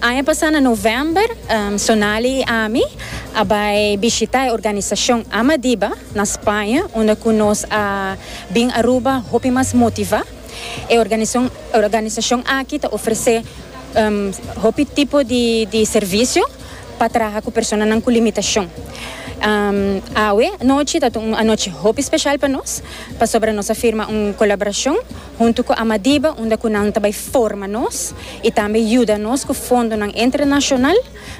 Aña pasá na novèmber, Sonali i ami a bai bishitá e organisashon Amadiba na Spaña, unda ku nos a bin Aruba hopi mas motivá. E organisashon aki ta ofresé hopi tipo di servisio pa traha ku personanan ku limitashon. Awe anochi ta un anochi hopi speshal pa nos. Pasobra nos a firma un kolaborashon huntu ku Amadiba unda ku nan ta bai forma nos i tambe yuda nos ku fondonan entrenashonal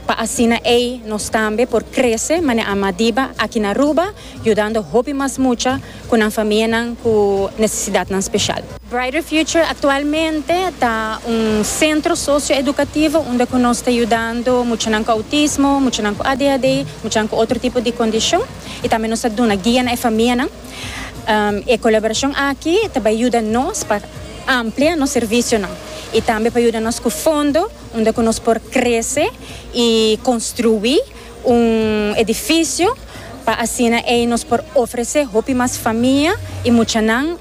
pa asina ei nos tambe por krese manera Amadiba aki na Aruba yudando hopi mas mucha ku nan famianan ku nesesidatnan speshal. Brighter Future aktualmente ta un sentro sosioedukativo unda ku nos ta yudando muchanan ku outismo, muchanan ku ADHD, muchanan ku otro tipo di kondishon i tambe nos ta duna guia na e famianan. E colaboracion aki ta bay yuda nos pa amplia nos servicionan y tambe pa yuda nos cu fondo unda cu nos por crece y construi un edificio pa asina ey nos por ofrece hopi mas famia y muchanan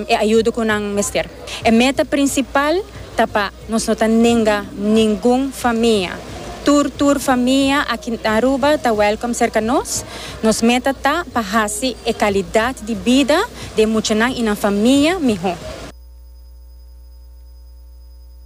e ayuda cu nan mester. E meta prinsipal ta pa nos no ta nenga ningun famia. Tur tur famia aki na Aruba ta wèlkom serka nos. Nos meta ta pa hasi e kalidat di bida di e muchanan i nan famia mihó.